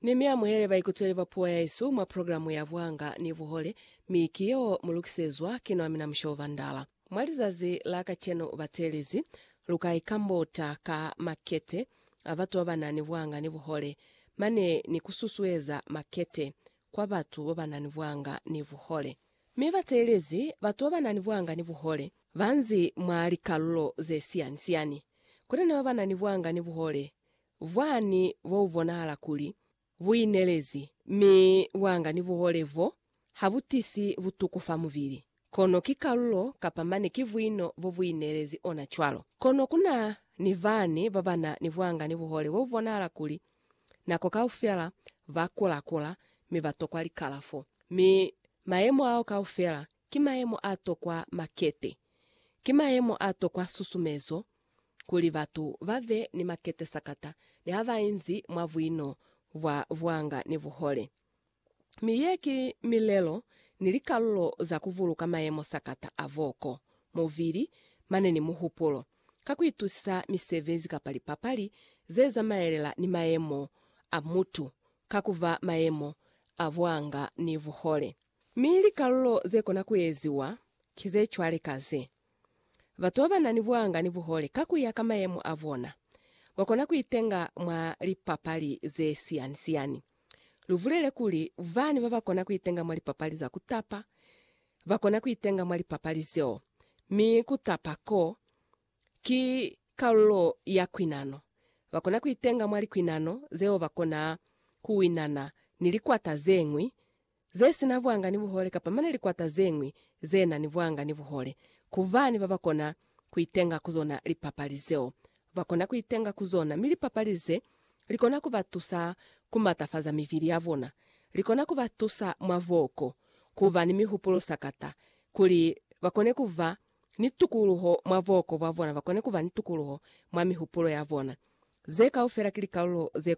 Ni mi amuhele baikuteli ba puo yaesu mwa programu ya Buhanga ni Buhole, mi ki yeo mu lukisezwa ki nwa mina Mushobo Bandala. Mwa lizazi la kacenu batelezi, lu ka ikambota ka makete a batu ba ba na ni buhanga ni buhole, mane ni ku susueza makete kwa batu babanani bwanga ni buhole. Mi bateelezi batu babanani bwanga ni buhole banzi mwa likalulo zesiyani-siyani. Kutena babanani bwanga ni buhole bwani bobubonahala kuli buinelezi, mi bwanga ni buhole bo habutisi butuku fa mubili. Kono ki kalulo kapa mane ki vwino bo bu ineelezi ona cwalo. Kono ku na ni bani ba ba na ni bwanga ni buhole bo bu bonahala kuli nako kaufela ba kula-kula mi ba tokwa likalafo. Mi mayemo ao kaufela ki mayemo a tokwa makete. Ki mayemo a tokwa susumezo kuli batu ba be ni makete sakata ni ha ba inzi mwa vwino bwa bwanga ni buhole. Mi ye ki milelo ni likalulo za ku vuluka mayemo sakata a voko, muvili, mane ni muhupulo, ka ku itusisa misebezi kapa lipapali ze zamaelela ni mayemo a mutu ka ku ba mayemo a buanga ni buhole. Mi likalulo ze kona ku eziwa ki ze cwale ka ze, Batu ba ba na ni buanga ni buhole ka ku ya ka mayemo a bona, ba kona ku itenga mwa lipapali ze siani-siani. Lubulele kuli, Bani babakona kuitenga mwa lipapali za kutapa bakona kuitenga mwa lipapali zeo, mi kutapa ko ki kalulo ya kwinano. Bakona kuitenga mwa likwinano zeo bakona kuwinana ni likwata zeñwi ze si na vwanga ni buhole kapa mane likwata ze ñwi ze na ni vwanga ni buhole, ku bani ba ba kona ku itenga ku zona lipapali zeo. Ba kona ku itenga ku zona, mi lipapali ze li kona ku ba tusa ku matafaza mivili ya bona. Li kona ku ba tusa mwa voko, ku ba ni mihupulo sakata, kuli ba kone ku ba ni tukuluho mwa voko bwa bona, ba kone ku ba ni tukuluho mwa mihupulo ya bona. Ze kaufela ki likalulo ze